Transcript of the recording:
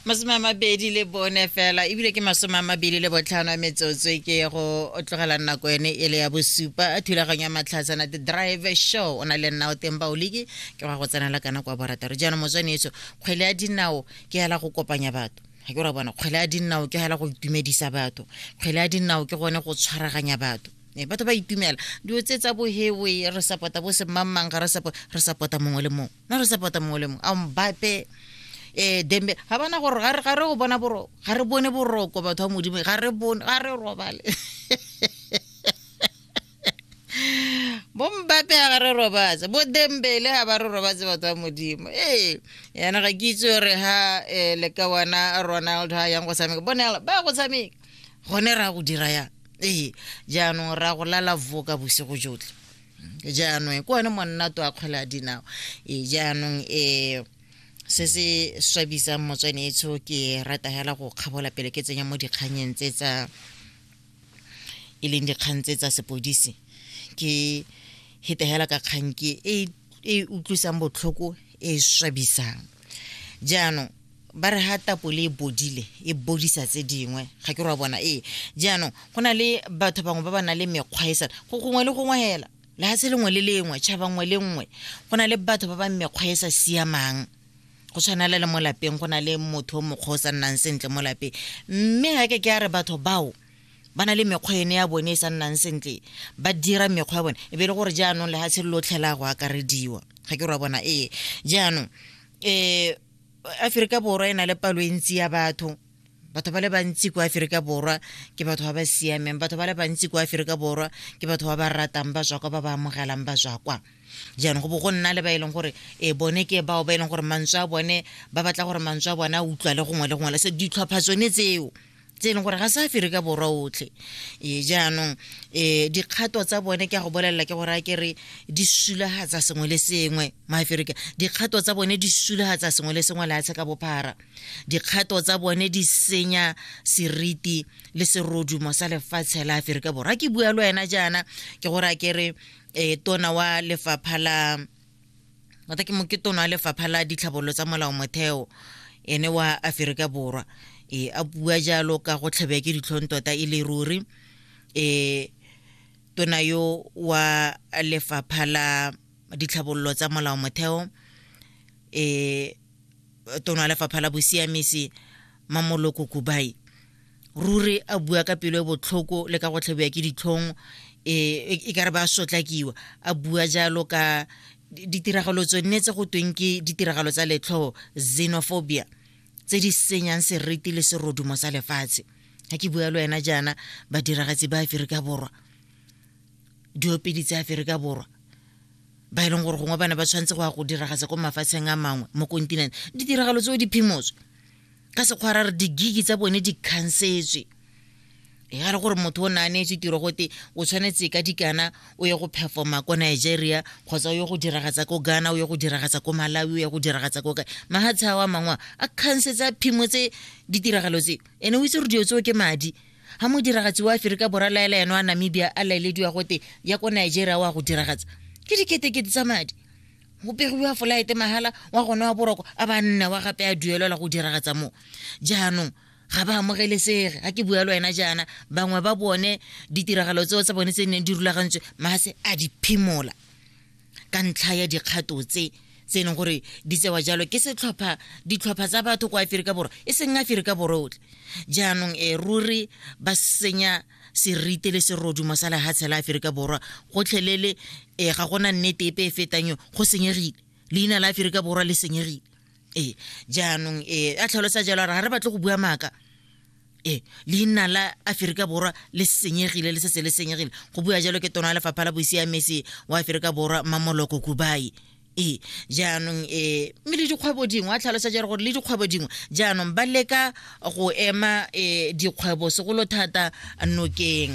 masome a mabedi le bone fela ebile ke masome a mabedi le botlhano a metsotso e ke go tlogela nako ene e le ya bosupa a thulaganyo ya matlhatsana the drive show o na le nna o teng baoliki ke go ya go tsenela kana kwa borataro jaanong motswane eso kgwele ya dinao ke ela go kopanya batho ga ke ra bona kgwele ya dinao ke ela go itumedisa batho kgwele ya dinao ke gone go tshwaraganya batho ee, batho ba itumela dilo tse tsa bohewe re sapota bo semangmang ga re sapota mongwe le mongwe na re support-a mongwe le mongwe a mbape eh dembe ga bana gore ga re ga re go bona boro ga re bone boroko batho ba modimo ga re bone ga re robale bo mbape ga re robatse bo dembele ga ba re robatse batho ba modimo ee yana ga ke itse gore ha eh, le ka wana ronald ha yang go tshameka bonela ba go tshameka gone ra go dira yang ee jaanong ra go lala voka bosigo jotlhe jaanong ke one monnato a kgwele a dinao e jaanong um se se swabisang motswane etsho ke rata hela go kgabola pele ke tsenya mo dikganyeng tse tsa e leng dikgang tse tsa sepodisi ke hetegela ka kgang ke e, e utlwisang botlhoko e swabisang jaanong ba re ha tapole e bodile e bodisa tse dingwe ga ke re wa bona ee jaanong go na le batho bangwe ba ba nang le mekgwa e sana go gongwe le gongwe hela lehatshe lengwe le lengwe tšhaba nngwe le nngwe go na le batho ba ba mekgwa e sa siamang go tshwanela le mo lapeng go na le motho o mokgwa o sa nnang sentle mo lapeng mme ga ke ke a re batho bao ba na le mekgwa ene ya bone e sa nnang sentle ba dira mekgwa ya bone e be e le gore jaanong lefatshe le lotlhe la go akarediwa ga ke ra bona ee jaanong um aferika borwa e na le palo e ntsi ya batho batho ba le bantsi kwa aferika borwa ke batho ba ba siameng batho ba le bantsi kwa aferika borwa ke batho ba ba ratang ba tswa kwa ba ba amogelang ba tswa kwa jaanong go bo go nna le ba e leng gore e bone ke bao ba e leng gore mantswe a bone ba batla gore mantswe a bone a utlwa le gongwe le gongwe le se ditlhopha tsone tseo tse e leng gore ga sa fere ka borwa otlhe e jaanong um dikgato tsa bone ke a go bolelela ke gore a ke re di sulagatsa sengwe le sengwe maaferika dikgato tsa bone di sulagatsa sengwe le sengwe leatshe ka bophara dikgato tsa bone di senya seriti le serodumo sa lefatshe la aferika borwa ke bua le wena jaana ke gore a ke re um tona wa lefapha la ngata ke moketona wa lefapha la ditlhabololo tsa molao motheo ene wa aferika borwa e a bua jalo ka go tlhabea ke ditlhong tota e le ruri e tona yo wa lefapha la ditlhabololo tsa molao motheo e tona wa lefapha la bosiamisi mamoloko kubai ruri a bua ka pelo e botlhoko le ka go tlhabiwa ke ditlhong e, e, e ka re ba sotlakiwa a bua jalo ka ditiragalo tso nne tse go tweng ke ditiragalo tsa letlho xenophobia tse di senyang seriti le serodumo sa lefatshe ga ke bua le wena jaana badiragatsi ba aferika borwa diopedi tsa aferika borwa ba e leng gore gongwe ba ne ba tshwanetse go ya go diragatsa ko mafatsheng a mangwe mo kontinente ditiragalo tseo di phimotswe ka sekgwa ra re digigi tsa bone di khansetswe ga re gore motho o ne a neetswe tiro gote o tshwanetse ka dikana o ye go performa ko nigeria kgotsa o ye go diragatsa ko ghana o ye go diragatsa ko malawi o ye go diragatsa ko kae mahatshe ao a mangwe a kgansetsa phimo tse ditiragalo tse ene o itse gore dilo tseo ke madi ga mo diragatsi wa aferika borwa laela eno a namibia a laelediwa gote ya ko nigeria o a go diragatsa ke diketekete tsa madi go pegiwa folaete mahala wa gone wa boroko a ba nne wa gape a duelelwa go diragatsa mo jaanong ga ba amogelesege ga ke bua le wena jaana bangwe ba bone ditiragalo tseo tsa bone tse neng di rulagantswe maase a di phimola ka ntlha ya dikgato tse tse e leng gore di tsewa jalo ke setlhopha ditlhopha tsa batho kwa aferika borwa e seng aferika borwa otlhe jaanong e ruri ba senya serite le serodumo sa lehatshe la aferika borwa gotlhelele e ga gona nnete epe e fetang yo go senyegile leina la aferika borwa le senyegile ee jaanong ee a tlhalosa jalo a re ga re batle go bua maaka ee leina la aferika borwa le senyegile le setse le senyegile go bua jalo ke tona ya lefapha la boisiamesi wa aferika borwa mamoloko kubai ee jaanong um mme le dikgwebo dingwe a tlhalosa jalo gore le dikgwebo dingwe jaanong ba leka go ema um dikgwebo segolo thata nokeng